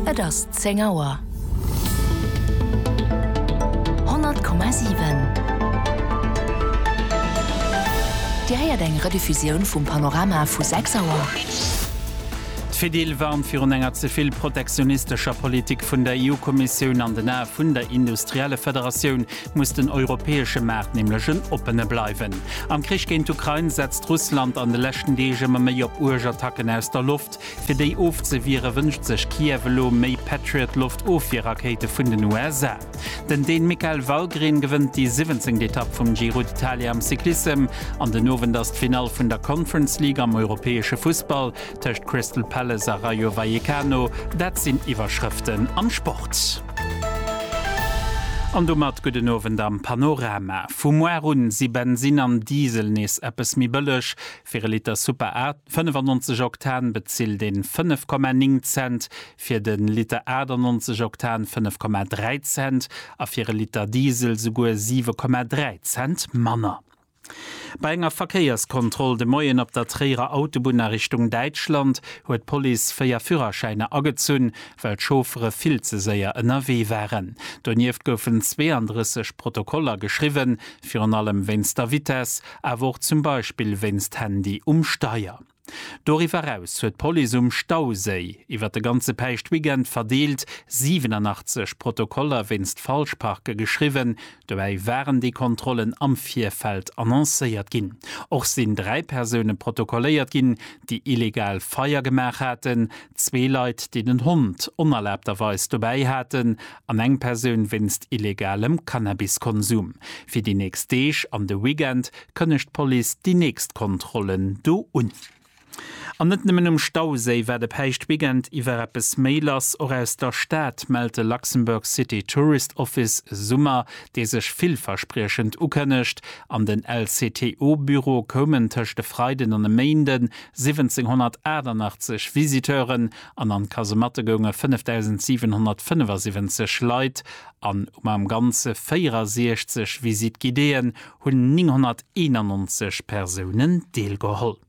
Et ass 10 Auer. 100,7. Dir héiert eng Rediffusioun vum Panorama vu 6 Auer. D'Fedil warnt virun enger ze vill protektionistescher Politik vun der EU-Kommissioun. An den Ae vun der Industriellefederatioun muss den europäesche Maart nämlech en oppene bleiwen. Am Krich géint d'Ukrain setzt Russland an de leschten Deeg ëmmer méi op uerg Attacken aus der Loft. Fir déi ofzewiere wënscht sech Kiew elo méi Patriot-Loftofwierrakéite vun den USA. Den Dän Mikael Wallgren gewënnt déi siwwenzéngt Etapp vum Giro d'Italia am Cyclissem an den Owend ass d'Finall vun der Conference League am europäesche Fussball tëscht Crystal Palace a Rayo Vallecano. Dat sinn Iwwerschrëften am Sport. An domat gudden Owend am Panorama. Vu muar un si Bensinn an Diesel nees eppes méi bëlleg. Fir e Liter Super A 95 Oktan bezilt een 5,9 Cent, fir de Liter 98 Oktan 5,3 Cent a fir e Liter Diesel souguer 7,3 Cent manner. Bei enger Verkéierskontroll de Moien op der Tréierer Autobunn a Richtung Däitschland huet d'Police véier Führerschäiner agezunn, well d'Chauffere vill ze séier ënnerwee waren. Donieft goufen 32 Protokoller geschriwwen, virun allem wéinst der Vitess. awer och zum Beispill wéinst Handy um Steier. Doriwwer eraus huet d'Police um Stauséi iwwer de ganze Päischtweekend verdeelt 87 Protokoller wéinst Falschparke geschriwwen. Dobäi waren déi Kontrollen am Virfeld annoncéiert ginn. Och sinn dräi Persoune protokolléiert ginn, déi illegal Feier gemaach haten, zwee Leit, déi den Hond onerlaabterweis dobäi haten an eng Persoun wéinst illegalem Cannabiskonsum. Fir déi nächst Deeg an de Weekend kënnegt d'Police déi nächst Kontrollen do un. An net nëmmen um Stauséi war de Päischtweekend iwwer eppes méi lass. Och aus der Stad mellt de Luxembourg City Tourist Office e Summer, dee sech villverspriechend ukënnegt. An den LCTO-Büro koumen tëscht e Freiden an e Méinden 1788 Visiteuren. an an d'Kasematte gounge 5.775 Leit an um am Ganze 64 Visite guidéeën hunn 991 Persounen deelgeholl.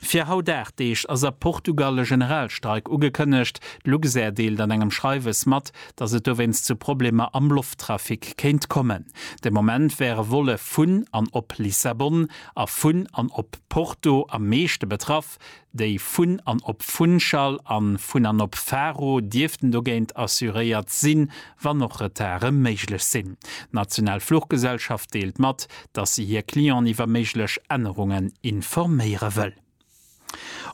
Fir haut 8 Deeg ass a Portugal e Generalstreik ugekënnegt. D'Luxair deelt an engem Schreiwes mat, datt et dowéinst zu Problemer am Lofttrafic kéint kommen. De Moment wäre Volle vun an op Lissabon a vun an op Porto am meeschte betraff, Déi vun an op Funchal an vun an op Faro dierften dogéint assuréiert sinn, wann och Retarde méiglech sinn. D'national Fluchgesellschaft deelt mat, dass si hir Clienten iwwer méiglech Ännerungen informéiere wëll.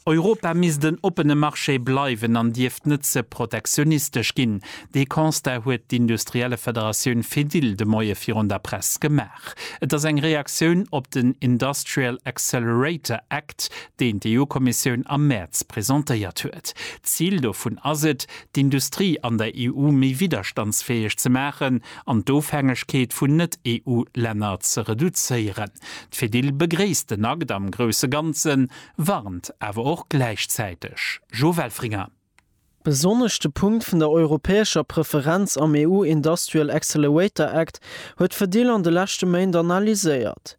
Europa misst en oppene Marché bleiwen an dierft net ze protektionistesch ginn. Dee Constat huet d'Industriellefederatioun Fedil de Moie virun der Press gemaach. Gemengedag. Et ass eng Reaktioun op den Industrial Accelerator Act, deen d'EU-Kommissioun am Mäerz presentéiert huet. D'Zil dovun ass et, d'Industrie an der EU méi widderstandsfäeg ze maachen an d'Ofhängegkeet vun Net-EU-Länner ze reduzéieren. D'Fedil begréisst den Akt am grousse Ganzen, warnt awer och gläichzäiteg. Jo Welfringer. Besonnesch de Punkt vun der europäescher Preferenz am EU Industrial Accelerator Act huet d'Fedil an de leschte Méint analyséiert.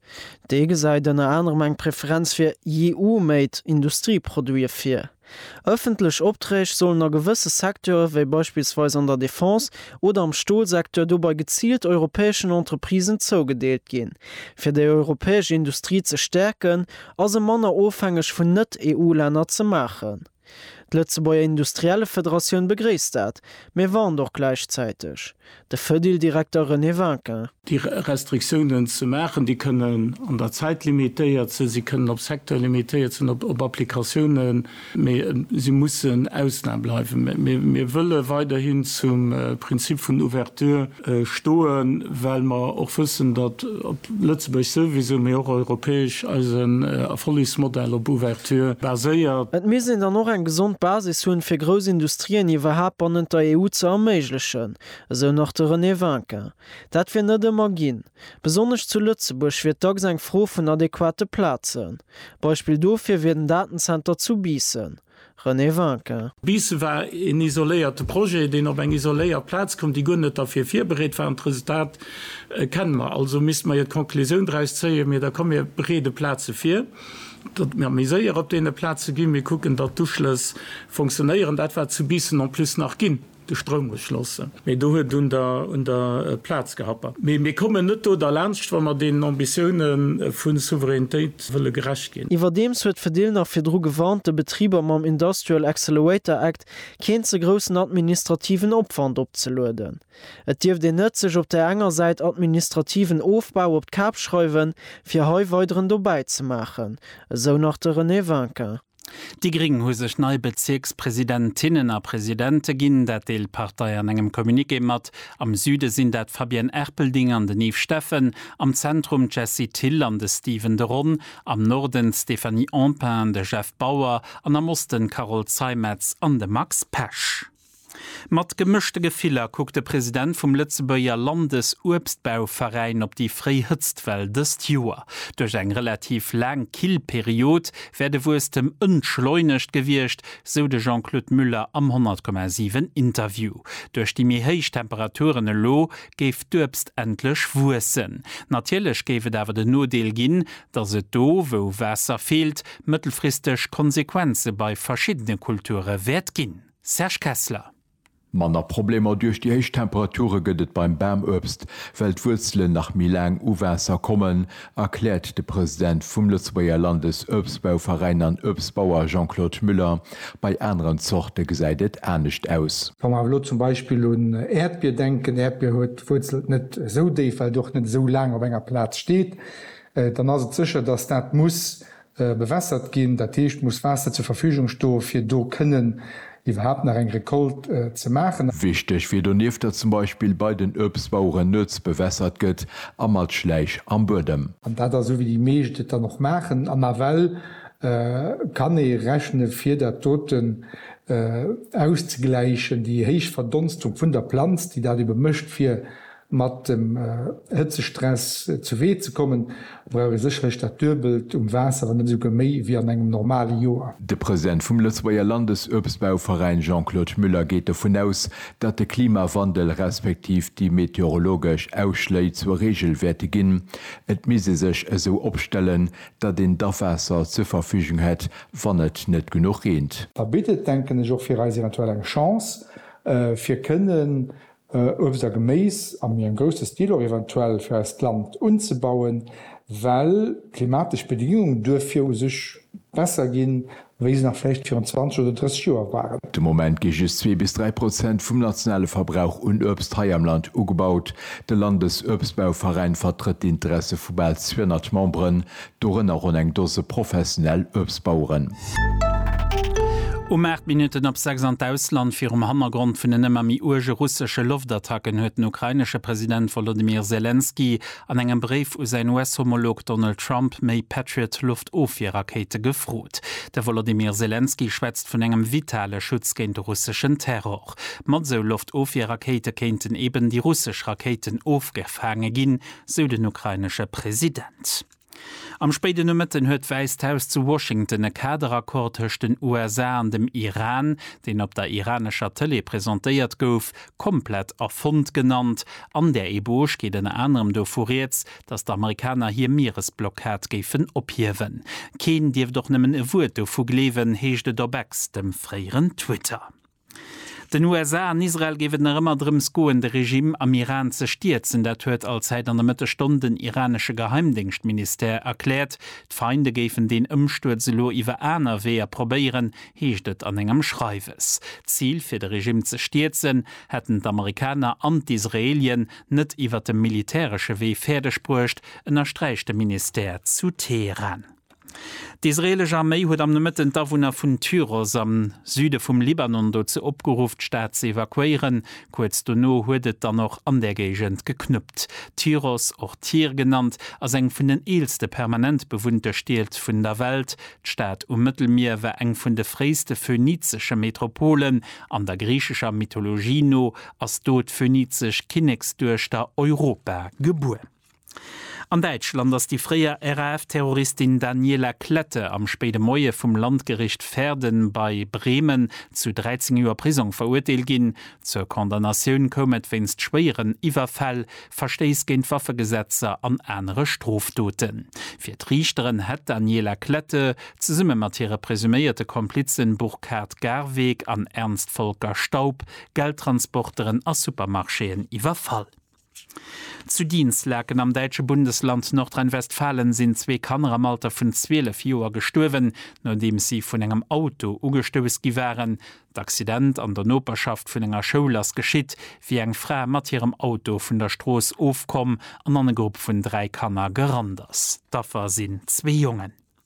Dee gesäit ënner anerem eng Preferenz fir EU-made Industrieproduite vir. Ëffentlech Opträg sollen a gewësse Secteure wéi beispillsweis an der Defense oder am Stolsecteur dobei geziilt europäeschen Entreprisen zougedeelt ginn. Fir déi europäesch Industrie ze stäerken a se manner ofhängeg vun Net-EU-Länner ze maachen, D'Lëtzebuerger Industriellefederatioun begréisst dat, mee warnt och gläichzäiteg de Fedil-Direkter René Vinquin. Déi Restriktiounen ze maachen, déi kënnen an der Zäit limitéiert sinn, si kënnen op Secteur limitéiert sinn, op Applikatiounen, mee si mussen Ausnam bleiwen. Mir wëlle weiderhin zum Prinzip vun Ouverture stoen, well mer och wëssen, datt op Lëtzebuerg souwisou, mee och europäesch eisen Erfollegsmodell op Ouverture baséiert. Et misst een dann och eng gesond Basis hunn, fir grouss Industrien iwwerhaapt bannent der EU ze erméiglechen, esou nach de René Winkin. Dat wier net ëmmer ginn. Besonnesch zu Lëtzebuerg wier dacks eng Fro vun adequate Plazen. Beispill dofir wier den Datenzenter zu Biissen. René Vinquin. Bis war een isoléierte Projet, deen op eng isoléiert Plaz koum, déi guer net derfir virbereet war. An d'Resultat kenne mer. Also misste mer jo d'Conclusioun draus zéien, Mir da komm, mir bereede Plaze vir, datt mir méi séier op deene Plaze ginn, mir kucken, datt d'Uschlëss funktionéieren. Dat war zu Biissen en plus nach ginn. De Stroum muss schlossen. Mee do huet un der un der Plaz gehappert. Mee mir kommen net do derlaanscht, wa mer deenen Ambitioune vu Souveränitéit wëlle gerecht ginn. Iwwerdeems huet d'Fedil nach virdru gewarnt, de Betriber mam Industrial Accelerator Act keen ze groussen administrativen Opwand opzelueden. Et dierft een net sech op där enger Säit administrativen Ofbau op d'Kap schreiwen, fir hei weideren dobäi ze maachen, esou nach de René Winkin. Déi gréng hu sech nei Bezierkspresidentinnen a Presidente ginn. Dat deelt d'Partei an engem Communiqué mat. Am Süde sinn dat d'Fabienne Erpelding an den Yves Steffen, am Zentrum d'Jessie Thill an de Steven de Ron, am Norden d'Stéphanie Empain an de Jeff Bauer an am Osten d'Carole Zeimetz an de Max Pesch. Mat gemëschte Gefiller kuckt de President vum Lëtzebuerger Landesuebstbauveräin op déi fréi Hëtztwell dëst Joer. Duerch eng relativ laang kill Period wär de Wuesstem entschleunegt gewiescht, sou de Jean-Claude Muller am 100,7 Interview. Duerch déi méi héich Temperaturen elo géif d'Uebst endlech wuessen. Natierlech géif et awer den Nodeel ginn, datt et do, wou Waasser feelt, mëttelfristeg Konsequenze bei verschiddene Kulture wäert ginn. Serge Kessler. Manner Problemer duerch déi héich Temperature gëtt et beim Bamuebst, well d'Wuerzelen nach méi laang u Waasser kommen, erkläert de President vum Lëtzebuerger Landesuebstbauveräin an Uebstbauer Jean-Claude Müller. Bei aneren Zorte gesäit et anescht aus. Wa mer awer elo zum Beispill un Äerdbier denken, Äerdbier huet d'Wuerzelt net esou déif, well et och net esou laang op enger Plaz steet, dann ass et sécher, datt dat muss bewässert ginn, dat heescht muss Waasser zur Verfügung sto fir do kënnen iwwerhaapt nach eng Récolte ze maachen. Wichteg wier donieft, datt zum Beispill bei den Uebstbaueren nuets bewässert gëtt a mat Schläich am Buedem. An dat ass esou wéi déi meescht et dann och maachen an nawell kann ee rechne fir dat doten auszegläichen, déi héich Verdonstung vun der Planz déi dat ebe mécht fir Mat dem Hëtzestress zu Wee ze kommen, brauch ee sécherlech dat Duebelt um Waasser, wann net esouguer méi, wéi an engem normale Joer. De President vum Lëtzebuerger Landesuebstbauveräin Jean-Claude Müller geet dovun aus, datt de Klimawandel respektiv déi meteorologesch Ausschléi zur Reegel wäerte ginn. Et misst ee sech esou opstellen, datt een d'Awaasser zur Verfügung hätt, wann et net genuch reent. Da bitt et, denken ech, och fir eis eventuell eng Chance, fir kënnen Uebst a Geméis a méi engem grousse Stil och eventuell fir eist Land unzebauen, well d'klimatesch Bedingunge duerfir u sech besser ginn, wéi se nach vläicht virun 20 oder 30 Joer waren. De Moment gi just zwee bis dräi Prozent vum nationale Verbrauch un Uebst hei am Land ugebaut. De Landesuebstbauveräin vertrëtt d'Interesse vu bal 200 Memberen, Dorënner ronn eng Dose professionell Uebstbaueren. Um 8 Minutten op 6 an d'Ausland. Virum Hannergrond vun den ëmmer méi uerge russesche Loftattacken huet den ukrainesche President Wolodymyr Selenskyj an engem Bréif u säin US-Homolog Donald Trump méi Patriot-Loftofwierrakéite gefrot. De Wolodymyr Selenskyj schwätzt vun engem vitale Schutz géint de russeschen Terror. Mat esou Loftofwierrakéite kéinten eben déi russesch Rakéiten ofgefaange ginn, sou den ukrainesche President. Am spéiden Nomëtten huet d'Wäisst Haus zu Washington e Kaderaccord tëscht den USA an dem Iran, deen op der iranescher Tëlee presentéiert gouf, komplett erfonnt genannt. An där Eboge geet ënner anerem dovu rieds, datt d'Amerikaner hir Mieresblockad géifen ophiewen. Keen dierft och nëmmen e Wuert dovu gleewen, heescht et op Ex, dem fréieren Twitter. Den USA an Israel géif et nach ëmmer drëms goen, de Regime am Iran ze stierzen. Dat huet Allzäit an der Mëttesstonn den iranesche Geheimdéngschtministère erkläert. D'Feinde géifen deen Ëmstuerz elo iwwer aner Weeër probéieren, heescht et an engem Schreiwes. D'Zil, fir de Regime ze stierzen, hätten d'Amerikaner an d'Israelien net iwwer de militäresche Wee fäerdeg bruecht, ënnersträicht de Ministère zu Teheran. D'israeelesch Arméi huet am Nomëtten d'Awunner vun Tyros am Süde vum Libanon dozou opgeruff, d'Stad ze evakuéieren. Kuerz dono huet et dann och an där Géigend geknuppt. Tyros, och Tyr genannt, ass eng vun den eelste permanent bewunnte Stied vun der Welt. D'Stad um Mëttelmier war eng vun de fréiste phönizesche Metropolen. An der griichescher Mythologie no ass do d'phönizesch Kinneksduechter Europa gebuer. An Däitschland ass déi fréier RAF-Terroristin Daniela Klette am spéide Moie vum Landgericht Verden bei Bremen zu 13 Joer Prisong verurteelt ginn. Zur Condamnatioun koum et wéinst schwéieren Iwwerfäll, Verstéiss géint d'Waffegesetzer an anere Strofdoten. Fir d'Riichteren hätt d'Daniela Klette, zesumme mat hire presuméierte Komplizen Burkhard Garweg an Ernst Volker Staub, Geldtransporteren a Supermarchéen iwwerfall. Zu Dinslaken am däitsche Bundesland Nordrhein-Westfalen sinn zwee Kanner am Alter vun 12 Joer gestuerwen, nodeems si vun engem Auto ugestouss gi waren. D'Accident an der Noperschaft vun enger Schoul ass geschitt, wéi eng Fra mat hirem Auto vun der Strooss ofkomm an an e Grupp vun dräi Kanner gerannt ass. D'Affer sinn zwee Jongen.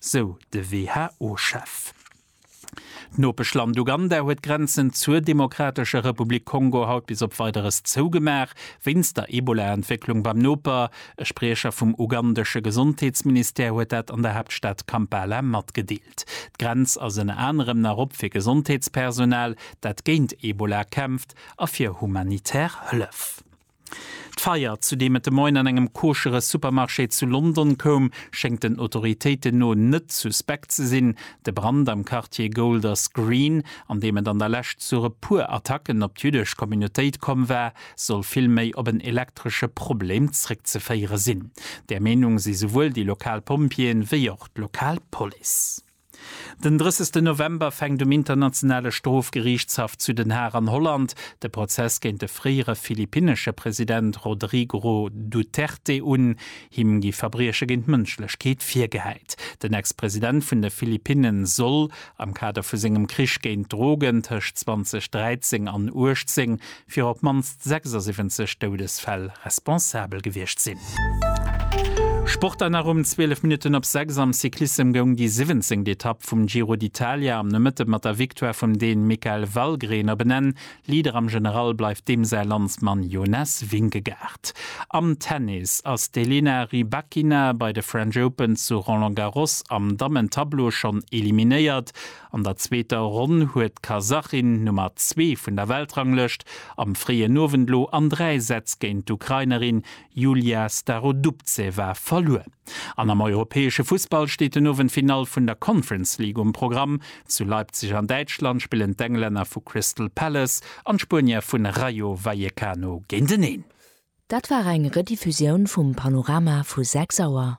sou de WHO-Chef. D'Nopeschland Uganda huet d'Grenzen zur Demokratescher Republik Kongo haut bis op Weideres zougemaach, wéinst der Ebola-Entwécklung beim Noper. E Spriecher vum ugandesche Gesondheetsministère huet dat an der Haaptstad Kampala matgedeelt. D'Grenz ass ënner anerem nach op fir Gesondheetspersonal, dat géint Ebola kämpft a fir humanitär Hëllef. D'Feier, zu deem et de Moien an engem koschere Supermarché zu London koum, schéngt den Autoritéiten no net suspekt ze sinn. De Brand am Quartier Golders Green, an deem et an der Lescht zu e puer Attacken op d'jüddesch Communautéit komm war, soll vill méi op en elektresche Problem zréckzeféiere sinn. Där Meenung si souwuel déi lokal Pompjeeën, wéi och d'lokal Police. Den 30 November fänkt um Internationale Strofgeriichtshaff zu Den Haag an Holland de Prozess géint de fréiere philippinnesche President Rodrigro Duterte un. Him gi Verbrieche géint d'Mënschlechkeet virgehäit. Den Ex-President vun de Philippinne soll, am Kader vu sengem Krich géint d'Drogen tëscht 2013 an 18, fir op d'mannst 76 Doudesfäll responsabel gewiescht sinn. Sport dann nach um 12 Minutten op 6 am Cyclissem goung déi siwwenzéngt Etapp vum Giro d'Italia am Nomëtte mat der Victoire vum Deen Mikael Valgren op en Enn. Leader am General bleift deem säi Landsmann Jonas Vingegaard. Am Tennis ass d'Elena Rybakina bei de French Open zu Roland Garros am Dammen-Tableau schonn eliminéiert. An der zweeter Ronn huet d'Kasachin, Nummer zwee vun der Weltranglëscht, am fréien Owend lo an dräi Sätz géint d'Ukrainerin Yulia Starodubtseva verluer. An am europäesche Fussball steet den Owend d'Finall vun der Conference League um Programm. Zu Leipzig an Däitschland spillen d'Englänner vu Crystal Palace an d'Spuenier vun Rayo Vallecano géinteneen. Dat war eng Rediffusioun vum Panorama vu 6 Auer.